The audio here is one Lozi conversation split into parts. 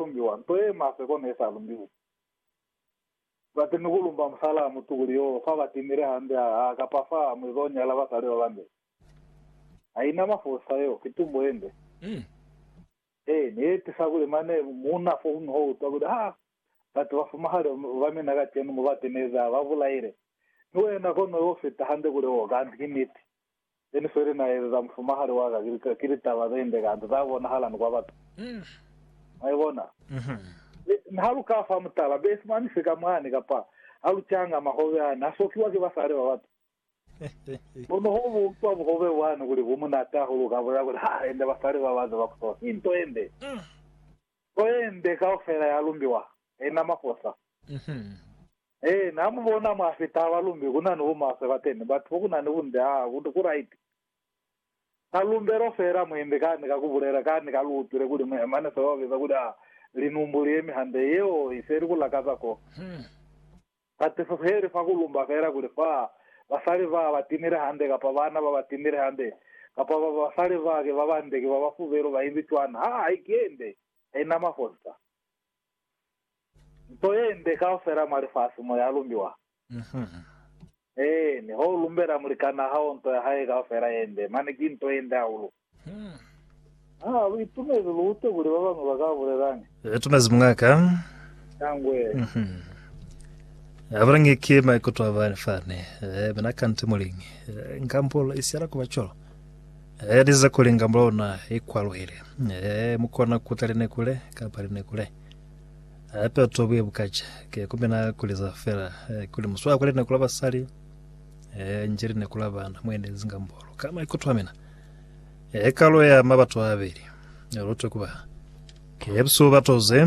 lumbiwa, nto ye maswe kono ye sa lumbiwi. Bati ni ku lumba musalaa mutu kuli yo fa ba timile hande ha, ha kapa fa mwi zo nyala basali ba bande. Ha ina mafosa yo, ki tumbo ye nde. Ee, ne ye tisa kuli mane muuna fo kuñwi ho utwa kuli, Ha, batu ba fumahali ba mina kacenu mo ba tenezi, ha ba bulaile. Mi wena kono yo fita hande kuli, Oh, kanti ki niti. Then feli na ezeza mufumahali wa ka ki, ki litaba ze nde kantu za bonahala ni kwa batu. Mwa ibona? Be, mi ha lu ka fa mutala, be simani sika mwani, kapa ha lu canga mahobe ani, ha sokiwa ki basali ba batu. Kono ho bu utwa buhobe bwani kuli bu munati hahulu, uka bulela kuli, Ha, ende basali ba ba ze ba kusola. Ki nto ye nde. Nto ye nde kaufela ya lumbiwa, ha ina mafosa. He na mu bona mwa sitaba lumbi ku na ni bumaswe ba teni, batu bo ku na ni bunde, aa, bunde ku raiti. Ka lumbelo fela mu imbi kani ka ku bulela, kani ka lu utwile kuli mu ye mane seo ba biza kuli, aa, linumbu li yemi hande, yeo i se ili ku lakaza ko. Tatiso se ili fa ku lumba fela kuli fa basali ba ba timile hande, kapa bana ba ba timile hande, kapa ba basali ba ki ba bande, ki ba ba fubelu, ba imbi cwana, aa, haikende, haina mafonsa. Nto yende kaufela mwa lifasi mo ya lumbiwa. Eeni, ho lumbela mulikan'a hao nto ya hae kaufela yende, mane ki nto yende hahulu. Ha lu itumezi lu utwe kuli ba bañwi ba ka bulelañi? Lu itumezi muña'ka. Shangwe. Ha bulangi ki maikuto a bani fani, mina kanti muliñi. Nka mpulo i siyela ku ba cwalo. Yaliza kuli ngamba lona i kwaluhile. Ee, mu kona kuta linekule kapa linekule. Hape bat'o buye bukaca. Ke kumbe na kuliza fela eh, kuli muswaya kwa lineku la basali, eh, nje lineku la bana, mu enelezi ngamba lo. Ka maikuto a mina, eh, kalo ya ma bat'o abeli, eh, lutwe kuba. Ke busubu bat'o ze.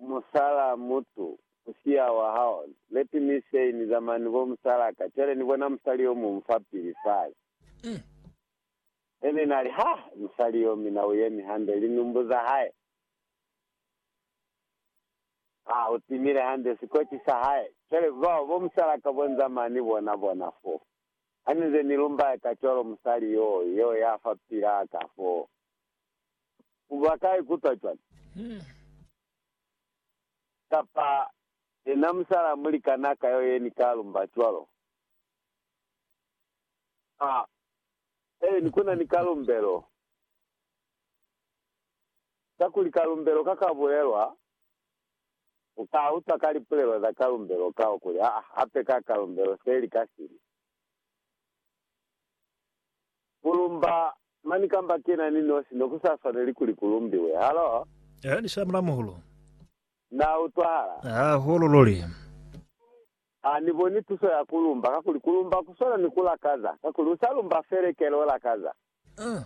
Musala mutu, musiya wa hao. Let me say, ni zamaya ni bo musala ka. Cwale ni bona musali yo muñwi fapili fale. He ni na li, Ha! Musali yo, mi na u yemi hande, linumbu za hae. Ha, u timile hande, sikoci sa hae. Cwale, bao bo musala ka bo ni zamaya ni bona, bona fo. Ha ni nze ni lumbaya ka cwalo, musali yo, yo ya fapilaa ka foo. U ba kai kutwa cwale? Kapa, Yena musala mulikana ka yo ye ni ka lumba cwalo. Ha, he, ni kuna ni kalumbelo. Kakuli kalumbelo ka ka bulelwa, u ka utwa ka lipulelo za kalumbelo kao kuli, Ha, hape ka kalumbelo se li ka sili. Ku lumba mani kamba kena ni nosi ne ku sa swaneli kuli ku lumbiwe. Halo? Aa, ni shamula, muhulu. Na utwahala? Hahulu luli. Ha ni boni tuso ya ku lumba, kakuli ku lumba ku swana ni ku lakaza, kakuli u sa lumba felekele u lakaza. Aa!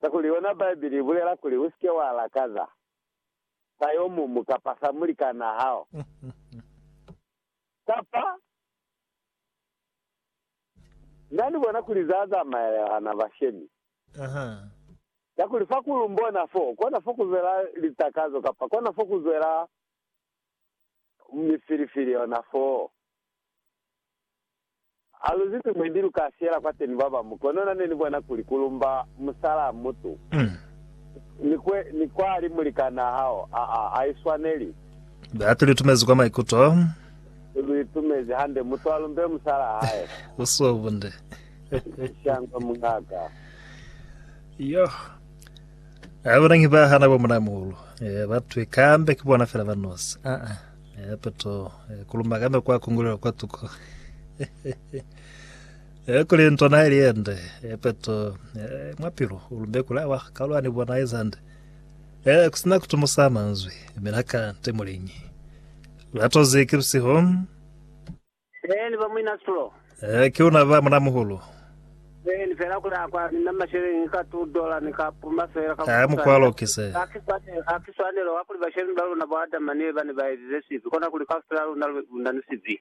Kakuli yona Bibele i bulela kuli, Usike wa lakaza sa yo mumu kapa sa mulikan'a hao, kapa Na ni bona kuli za zamaya hana bashemi. Kakuli fa ku lumbona fo, kona fo ku zwela litakazo, kapa kona fo ku zwela mifilifili yona foo. Ha lu zibi mwe ndi lu ka siyela kwateni ba bamu, kono na ne ni bona kuli ku lumba musalaa mutu ni kwe ni kwali mulikanaa hao, aa, ha i swaneli. Batuli tumezi kwa maikuto. Ni lu itumezi hande. Mutu alumbe musala hae. U so bunde. Shangwe mungaka. Yoh. A bona ngi ba hana bo muna muhulu. Eh, ba twi kambe ki bona fela ba nosi. Ah ah. Eh, peto eh, kuluma kambe kwa kungulelo kwa tuko. eh, kuli ntona ili ende. Eh, peto eh, mwapilu ulumbe kula wa kalwa ni bona izande. Eh, kusina kutumusa manzwi. Mina ka ntemulingi. Lirato ze ki lusiho. Ee, ni ba muina Sulo. Ee, ki luna ba munamuhulu. Ee, ni fela kuli akwa ni na masheleñi ka two dollar, ni ka puma fela ka ku Aa, mukwalo swanela. ki se. Ha ki swanelo, ha ki swanelo wa kuli bashemi ba luna bo Adama ni Eva ne ba ezize sibi, kona kuli kaufela luna lu na ni sibi.